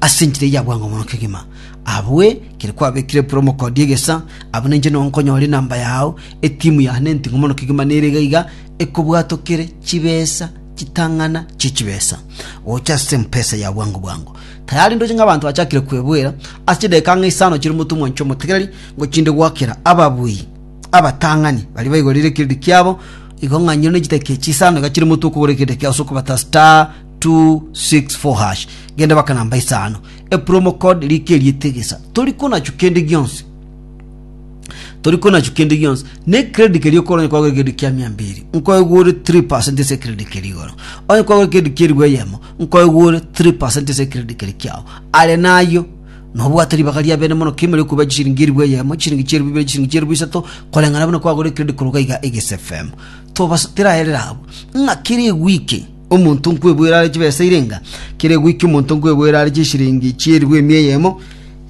ase enchera eyia bwango mono kegima. Abwe, kere kwabekire buru omokodi egesa, abwo ninche nonya nkonyore enamba yao, etimu ya hane enting'u mono kegima nere iga iga ekobwatokere chibesa chitang'ana chie chibesa gocha ase empesa ya bwango bwango. Tayari ndoche ng'a abanto bachakire kwebwera ase chidakika ng'a isano chire omonto omwancha omotegereri ngochinde goakera ababui abatang'ani baria baigorire ekiredi kiabo igo ng'a nyiro ne chidakika echi isano iga chire omonto okogora ekiredi ekiago ase okobata star 264 hash genda baka namba isano epromo code rike riete gesa tori konachu kende gionsi tori konachu kende gionsi ne credit kerio koro nyakwa gore kende kia mia mbiri nkoe gore 3% ese credit kerio goro onye kwa gore kende kia ribu eyemo nkoe gore 3% ese credit kerio kiao are nayo nobwate ribaga ria bene mono kimere kuba chishiringi eribu eyemo chishiringi cheribu ibere chishiringi cheribu isato koreng'ana buna kwagore credit koroga iga egese fm tobasa teraerera abo ng'a kere wiki Omonto nkweboera are chibesa irenga, kere goika omonto nkweboera are chisiringi chi'eribu emia eyemo,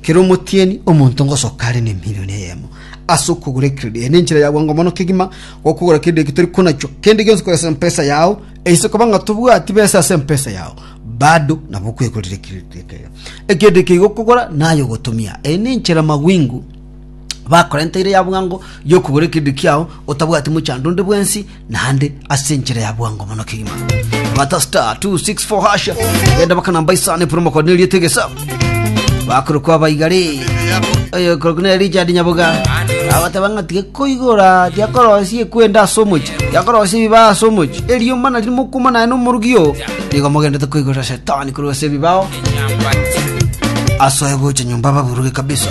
kere omotieni omonto ngosoka are nemilioni eyemo ase okogora ekredi. Eye nenchera ya bwango mono kegima gokogora kende eki tori konachio. Kende gionsi koresa empesa yao, eise koba ng'a tobwati besa ase empesa yao, bado nabo okwegorera ekredi ekero ekende eke igokogora naye ogotumia. Eye nenchera magwingo. bakorenteire ya bwango y'okogora ekerendi kiao otabwati mochando onde bwensi naende ase enchera ya bwango mono kegima bata star 264 hasha genda baka namba isano epura mokoni eriete egesa bakorokwa baigari oyo korokwa na richard nyaboga abateba ng'a tigekoigora tiakorosia ekwenda ase omochi tiakorosia ebibao ase omochi eriomba nari mokuma naye nomorugio nigo mogendete koigorera shetani korwa ase ebibao asoe gocha nyomba baburuge kabisa